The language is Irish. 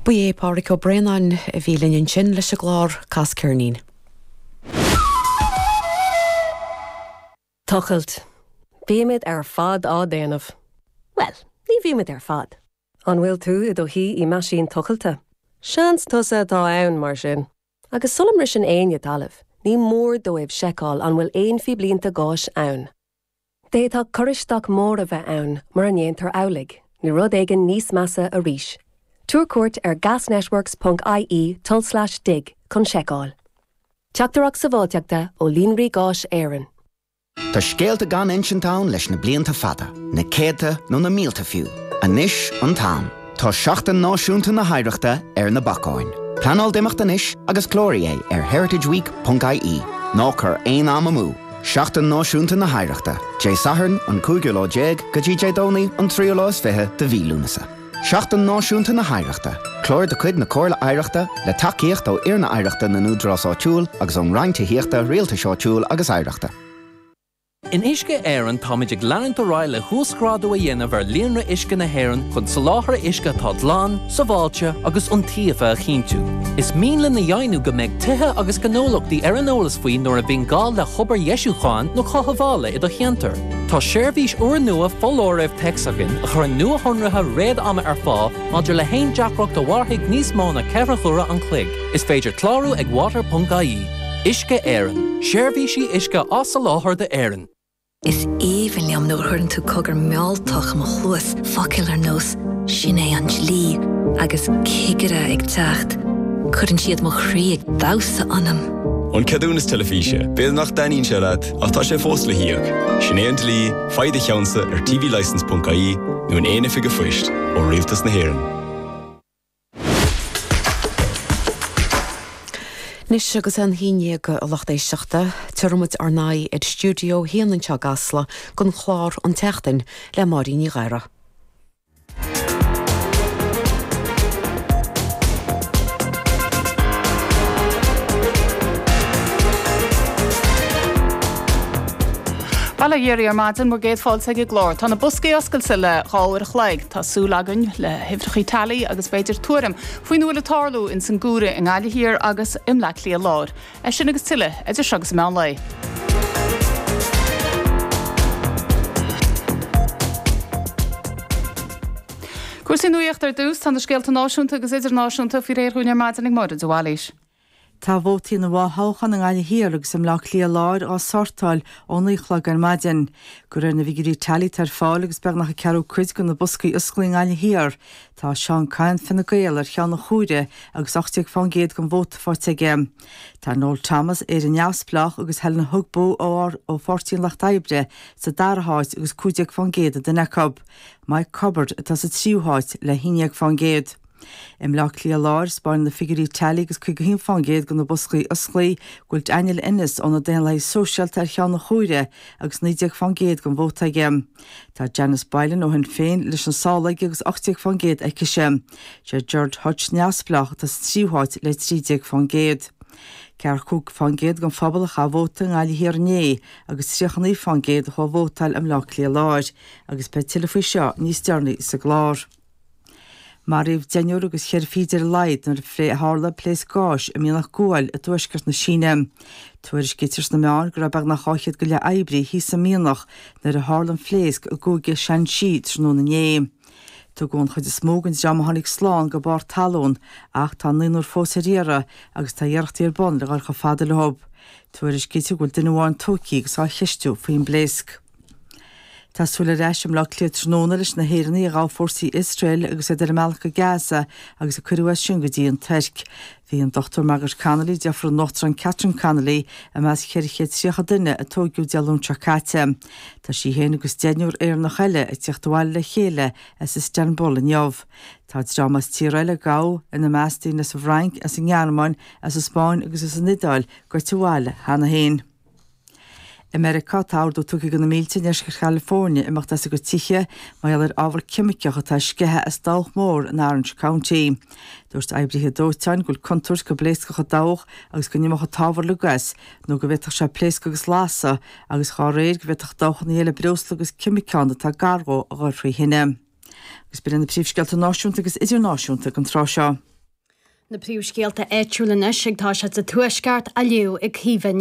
Ba é Pádraig Ó Braonáin a bhí linn ansin leis an gclár Cas Ceirnín. Tochailt. Bímid ar fad á déanamh. Bhuel, ní bhímid ar fad. An bhfuil tú i do shuí i meaisín tochailte? Seans tusa atá ann, mar sin. Agus sula mbriseann éinne talamh, ní mór dóibh seiceáil an bhfuil aon phíblínte gáis ann. D'fhéadfadh cur isteach mór a bheith ann mura ndéantar amhlaidh, nó rud éigin níos measa arís. Tabhair cuairt ar gasnetworks ponc ie tulslais dig chun seiceáil. Teachtaireacht sábháilteachta ó Líonraí Gáis Éireann. Tá scéalta gan insint ann leis na blianta fada, na céadta nó na mílte fiú. Anois an t-am. Tá Seachtain Náisiúnta na hOidhreachta ar na bacáin. Pleanáil d'imeacht anois agus cláraigh é ar heritageweek.ie. Ná cuir aon am amú! Seachtain Náisiúnta na hOidhreachta, Dé Sathairn an cúigiú lá déag go dtí Dé Domhnaigh an tríú lá is fiche de mhí Lúnasa. Seachtain Náisiúnta na hOidhreachta, Clár de chuid na Comhairle Oidhreachta, le tacaíocht ó Fhoirne Oidhreachta na nÚdarás Áitiúil agus ón Roinn Tithíochta, Rialtais Áitiúil agus Oidhreachta. In Uisce Éireann táimid ag leanúint ar aghaidh le huasghrádú a dhéanamh ar líonra uisce na hÉireann chun soláthar uisce atá glan, sábháilte agus iontaofa a chinntiú. Is mian linn a dheimhniú go mbeidh tithe agus gnólachtaí ar an eolas faoi nuair a bhíonn gá le hobair dheisiúcháin nó chothabhála i do cheantar. Tá seirbhís úrnua foláirimh téacs againn a chuireann nuashonruithe réad-ama ar fáil maidir le haon deacracht a mhairfidh níos mó ná ceithre huaire an chloig. Is féidir clárú ag water.ie. Uisce Éireann, Seirbhísí uisce á soláthar d'Éirinn. Is aoibhinn liom nuair a chuireann tú cogar mealltach i mo chluas, focail ar nós 'Sin é an dlí' agus 'Cigire ag teacht'. Cuireann siad mo chroí ag damhsa ionam. An ceadúnas teilifíse, b'fhéidir nach dtaitníonn sé leat ach tá sé fós le híoc. Sin é an dlí, faigh do cheannsa ar tvlicence.ie nó in aon oifig an phoist ó Rialtas na hÉireann. Anois agus é an haon ndéag, a lucht éisteachta, tabharfaidh muid ár n-aghaidh ar stiúideo a haon anseo i gCasla don chlár An tSeachtain le Máirín Ní Ghadhra. Bail ó Dhia oraibh ar maidin, bhur gcéad fáilte ag an gclár. Tá na boscaí oscailte le dhá uair an chloig. Tá súil againn le huimhreachaí teailí agus b'fhéidir tuairim faoina bhfuil ag tarlú ins an gcomhaireamh i nGaillimh Thiar agus i mBleá Cliath Láir. É sin agus tuilleadh, idir seo agus an meán lae. Cúrsaí nuaíochta ar dtús, tá na scéalta náisiúnta agus idirnáisiúnta faoi réir dhúinn ar maidin ag Máire de Bhailís. Tá vótaí na bhfothoghchán i nGaillimh Thiar agus i mBleá Cliath Láir á sortáil ón naoi a chlog ar maidin. De réir na bhfigiúirí teailí atá ar fáil agus beagnach an ceathrú cuid de na boscaí osclaí i nGaillimh Thiar. Tá Seán Kyne, Fine Gael, ar cheann an chomhairimh agus ocht déag faoin gcéad den vóta faighte aige. Tá Noel Thomas, Éire Neamhspleách, agus Helen Ogbu ó Pháirtí an Lucht Oibre sa dara háit agus cúig déag faoin gcéad an duine acu. Mike Cubbard atá sa tríú háit le haon déag faoin gcéad. I mBleá Cliath Láir, spáineann na figiúirí teailí agus 51% de na boscaí osclaí go bhfuil Daniel Ennis ó na Daonlathaithe Sóisialta ar cheann an chomhairimh agus 19% den vóta aige. Tá Janice Boylan ó Shinn Féin leis na sála aige agus 18% aicise. Sé Gerard Hutch, Neamhspleách, atá sa tríú háit le 13%. 45% den phobal a chaith vóta i nGaillimh Thiar inné agus 39% a chuaigh a vótáil i mBleá Cliath Láir agus beidh tuilleadh faoi seo níos deireanaí sa gclár. Maraíodh deichniúr agus ceithre fichid ar a laghad nuair a tharla pléasc gáis i mianach guail i dtuaisceart na Síne. Tuairiscítear sna meáin go raibh beagnach dhá chéad go leith oibrí thíos sa mianach nuair a tharla an phléasc i gcúige Shaanxi tráthnóna inné. Tugadh an chuid is mó den dream a tháinig slán go barr talún ach tá naonúr fós ar iarraidh agus tá iarrachtaí ar bun le dhul chomh fada leo. Tuairiscítear go bhfuil duine amháin tógtha agus á cheistiú faoin bpléasc. Tá súil ar ais i mBleá Cliath tráthnóna leis na hÉireannaigh a ghabh fórsaí Iosrael agus iad ar a mbealach go Gaza agus a cuireadh as sin go dtí an Tuirc. Bhí an Dr Margaret Connolly, deirfiúr an Uachtaráin Catherine Connolly, i measc 430 duine a tóigeadh Dé Luain seo caite. Tá sí féin agus deichniúr Éireannach eile ag tíocht abhaile le chéile as Istanbul inniu. Tá dream as tíortha eile a gabhadh, ina measc daoine as an bhFrainc, as an nGearmáin, as an Spáinn agus as an Iodáil, gaibhte abhaile cheana féin. I Meiriceá, tá ordú tugtha do na mílte i ndeisceart Chalifornia imeacht as a gcuid tithe mar gheall ar ábhar ceimiceach atá ag sceitheadh as dabhach mór in Orange County. Dúirt oibrithe dóiteáin go bhfuil contúirt go bpléascfadh an dabhach agus go n-imeodh an t-ábhar le gais nó go bhféadfadh sé pléascadh agus lasadh agus dá réir, go bhféadfadh dabhchannaí eile breosla agus ceimiceán atá gar dhó a dhul faoi thine. Agus b'in iad na príomhscéalta náisiúnta agus idirnáisiúnta ag an tráth seo. Na príomhscéalta áitiúla anois ag tosaí sa Tuaisceart, á léamh ag Caoimhe Ní